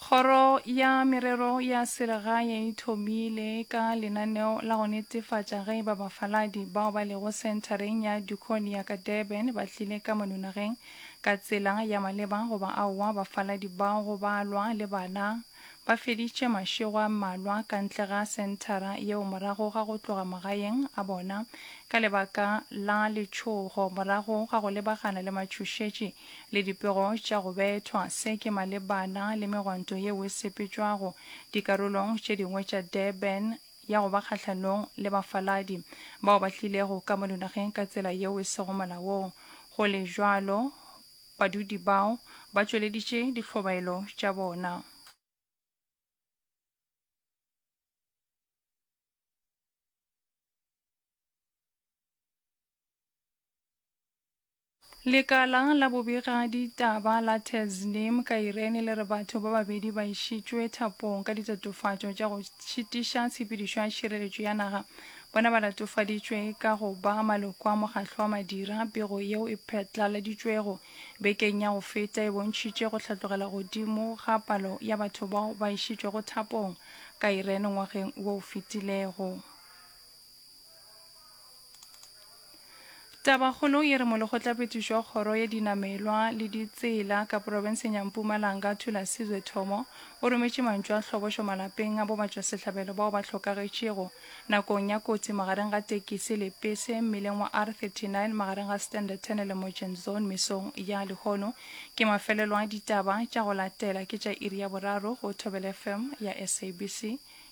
Kgoro ya Merero ya Selegae e thomile ka lenaneo la go netefatša ge eba bafaladi bao ba lego senthareng ya Dukone ya ka Durban ba tlile ka mononageng ka tsela ya maleba goba aowa. Bafaladi bao go balwa le bana, Ba feditše mašego a mmalwa ka ntle ga senthara yeo morago ga go tloga magaeng a bona ka lebaka la letšhogo morago ga go lebagana le matšhošetši le dipego tša go bethwa. Se ke malebana le megwanto yeo e sepetšwago dikarolong tše dingwe tša Durban ya go ba kgahlanong le bafaladi bao ba tlilego ka mo dinageng ka tsela yeo e sego molaong. Go le bjalo, Badudi bao ba tšweleditše dihlobaelo tša bona. Lekala la bobega ditaba la Tasnim ka Irene le re batho ba babedi ba išitšwe thapong ka ditatofatšo tša go šitiša tshepedišo ya tšhireletšo ya naga Bona ba latofaditšwe ka go ba maloko a mokgatlo wa madira. Pego yeo e phatlaladitšwego bekeng ya go feta e bontšhitše go hlatlogela godimo ga palo ya batho bao ba išitšwego thapong ka Iran ngwageng wo o fetilego. Tabakgolo ye re Molekgotlapetiši wa Kgoro ya Dinamelwa le Ditsela ka Profenseng ya Mpumalanga, Thulasizwe Thomo, o rometše mantšu a hlobošo malapeng a bobatšwasehlabelo bao ba hlokagetšego nakong ya kotsi magareng ga tekisi le pese mmileng wa R39 magareng ga Standerton le Mogen Zone mesong ya lehono. Ke mafelelo a ditaba tša go latela ke tša iri ya boraro go Thobela FM ya SABC.